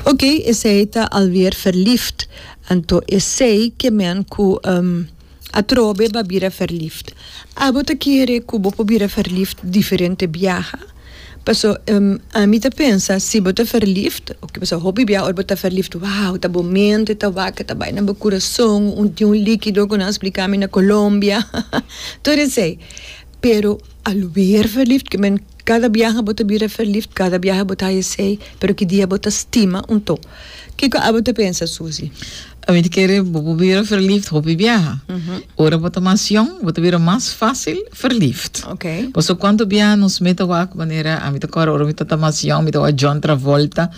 Ok, esey ta alweer verliefd. Anto esey ke men ku atrobe ba bira verliefd. Abo ta kere ku bo por bira verliefd diferente biaha. Paso, ami ta pensa si bo ta verliefd, paso hopi biaha ora bo ta verliefd, wow, ta bo mente ta wak, ta bai na bo kurason, un di un likido ku nan splika mi na Colombia, todo esey. Pero. Alweer verliefd ke men Kada biaha bo ta bira verliefd Kada biaha bo ta haja sei Pero ki dia bo ta stima un to Kiko abo ta pensa Susie? Ami ta kere bo por bira verliefd hopi biaha Ora bo ta mas yong bo ta bira mas fácil verliefd Oké. Paso kuantu biaha nos mei ta wak manera ami ta kòrda ora mi ta ta mas yong mi ta wak John Travolta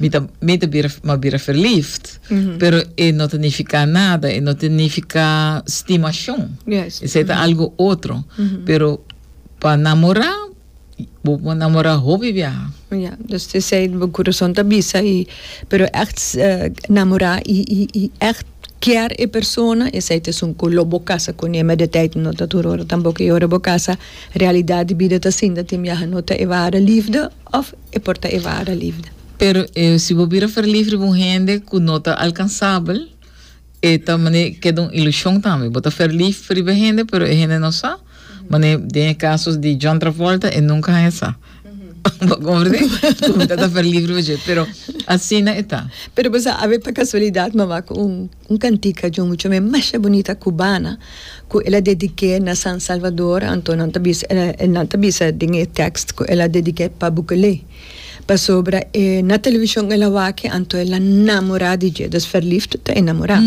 mi ta mei ta bira mas bira verliefd. Pero e no ta nifiká nada, e no ta nifiká stimashon. Esei ta algu otro. Pero pa namorá, bo por namorá hopi biaha. Ya, dus ta esei bo kurason ta bisa i, pero ègt namorá i, i, i ègt kier e persona, esei ta esun ku lo bo kasa kuné. Mei di tèit, no ta tur ora tampoco. I ora bo kasa, realidat di bida ta asinta, tin biaha no ta e wara lifde òf e por ta e wara lifde. Pero e si bo bira ferlif riba un hende ku no ta alkansabel, e ta mane keda un ilushon tambe. Bo ta ferlif riba e hende, pero e hende no sa. Mane den e kaso di John Travolta, e nunka haña sa. Bo komprende? Ku bo ta ta ferlif riba dje, pero asina e ta. Pero bo sa, a be pa kasualidat mama ku un. Un cantica di un mucha me masha bunita cubana cu el a dedique na San Salvador anto nan ta bisa e nan ta bisa den e text cu el a dedique pa Bukele pasobra e na television el a waki anto el a namora di dje dus verliefd ta enamora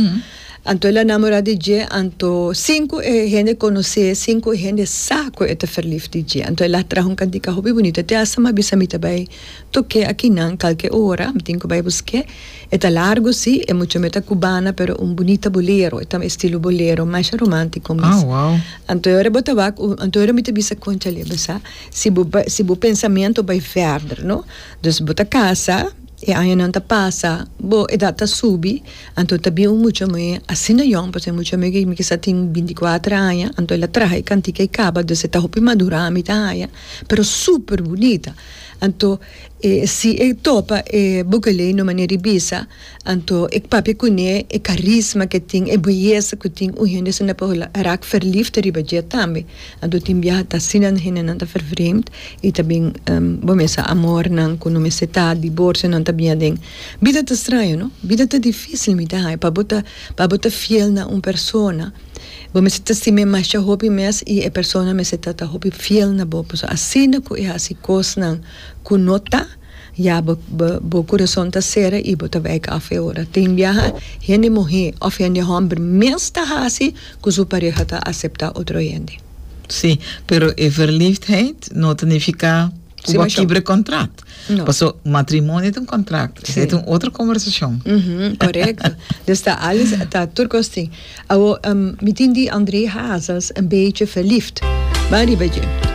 anto el a namora di dje anto sin cu e hende conoce sin cu e hende sa cu e ta verliefd di dje anto el a traha un cantica hopi bunita te asta mi a bisa mi ta bay Toke akinan kalke ora mi tin ku bai busk'é. E ta largu si, e mucha me ta kubana pero un bunita bolero, e ta estilo bolero masha romántiko mes. Anto ora bo ta wak un, anto ora mi ta bisa konchalé besa si bo bai si bo pensamentu bai vèrder no. Dus bo ta kasa, e añanan ta pasa, bo edat ta subi, anto ta bin un mucha muhé asina yòn pasobra e mucha muhé ki mi kisa tin bintikuater aña anto el a traha e kantika e kaba dus e ta hopi madurá mi ta haña pero super bunita. Anto e si e topa e Bukeley no manera di bisa, anto e papia kuné, e karisma ke tin, e beyesa ku tin, un hende asina por raak verliefd riba dje tambe. Anto tin biaha ta asina, hendenan ta vervreemd i ta bin bo mester amornan ku no mester ta, diborsionan ta bin aden. Bida ta straño, no? Bida ta difísil, mi ta haña pa bo ta pa bo ta fiel na un persona. Bo mester ta stim'é masha hopi mes i e persona mester ta ta hopi fiel na bo, pasobra asina ku e hasi kosnan ku no ta, ya bo bo bo kurason ta sera i bo ta wèk af e ora. Tin biaha hende muhé òf hende hòmber mes ta hasi ku su pareha ta aseptá otro hende. Sí, pero e verliefdheid no ta nifiká ku bo a kibra e kòntrat. No. Paso matrimonio ta un contract. Sí. Esa un otro conversacion. Mm -hmm, correcto. dus ta alles, ta tur costing. Awo, um, mi tin di André Hazes een beetje verliefd. Ba riba dje.